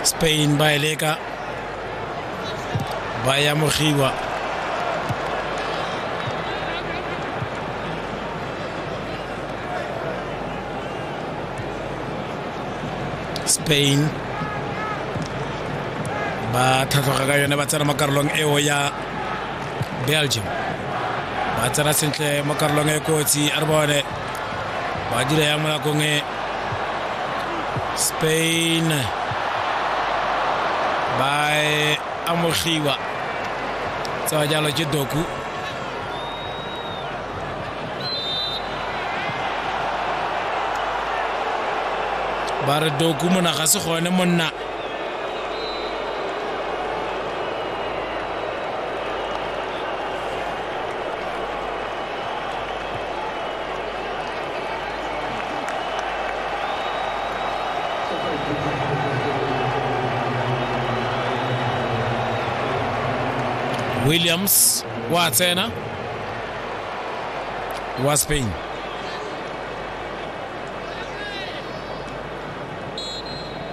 spain ba e leka ba ya mogiwa spain ba tlhatlhoga ka yone ba tsena mo karolong eo ya belgium ba tsena sentle mo karolong e kotsi a re bone ba dira yang mo nakong e spain ba e amogiwa tsewa jalo ke doku ba re doku mona ga se gone monna Williams wa tsena wa Spain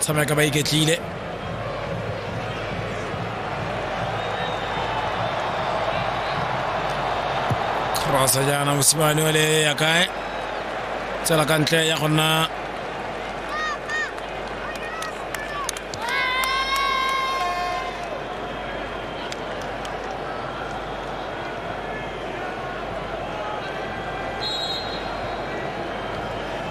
tsamaya ka ba iketlile cross jaana mosimane ole ya kae tsela ka ntle ya go nna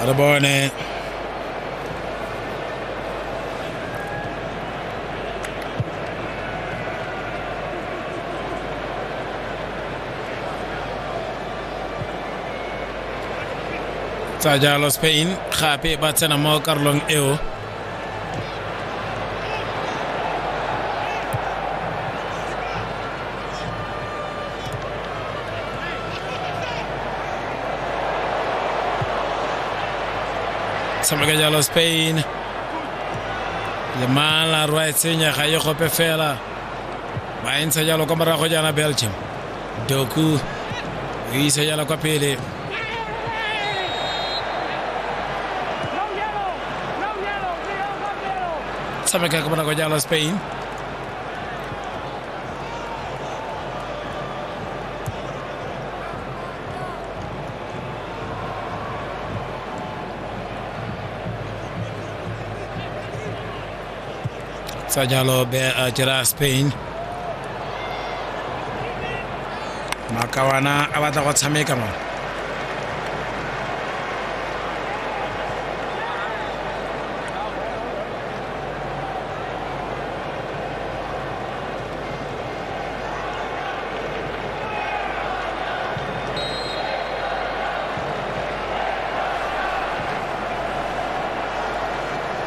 Attaboy, Nate. tsa jalo spain gape ba tsena mo karolong eo tshameka jalo spain lemala rwa e tsenya ga ye gope fela ba e ntsha jalo kwa morago jaana belgium Doku o isa jala kwa pele. Tshameka ka bonako jalo Spain. Tsanyalo be a jera Spain Makawana a batla go tshameka mo